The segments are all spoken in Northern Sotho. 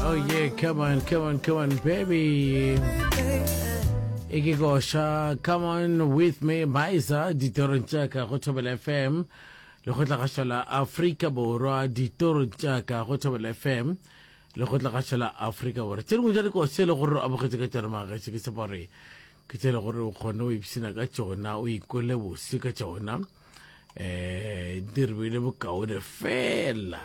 Oh yeah, come on, come on, come on, baby. Ikigosha, come on with me, Baisa, ditorong tša ka go Thobela FM. Le go tlagašola Afrika Borwa, ditorong tša ka go Thobela FM. Le go tlagašola Afrika Borwa. Tše dingwe tša dikose le gore o amogetše ka tšona magaše ke sepore. Ke tše le gore o kgone o ipshina ka tšona, o ikole bose ka tšona. eh di re bile bokaone fela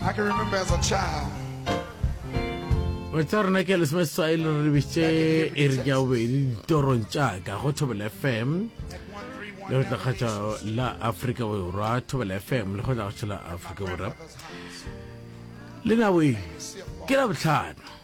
I can remember as a child. Wetsa rona ke lesome seswai le re lebisitse e re ja bobedi ditorong tšaka go thobela fm le go tlakgatša la aforika borwa thobela fm le go tlakgatša la aforika borwa le naboe ke la botlhano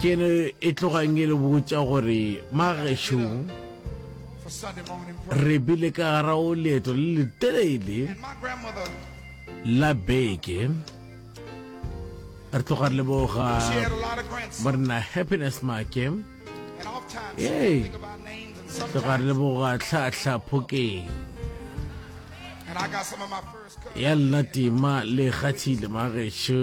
Ke ne e tlogang e le botša gore magesho re bile ka gara o leeto le le telele la beke re tloga re leboga morena happiness make ee tloga re leboga tlhahla phokeng ya lena tima le kgathile magesho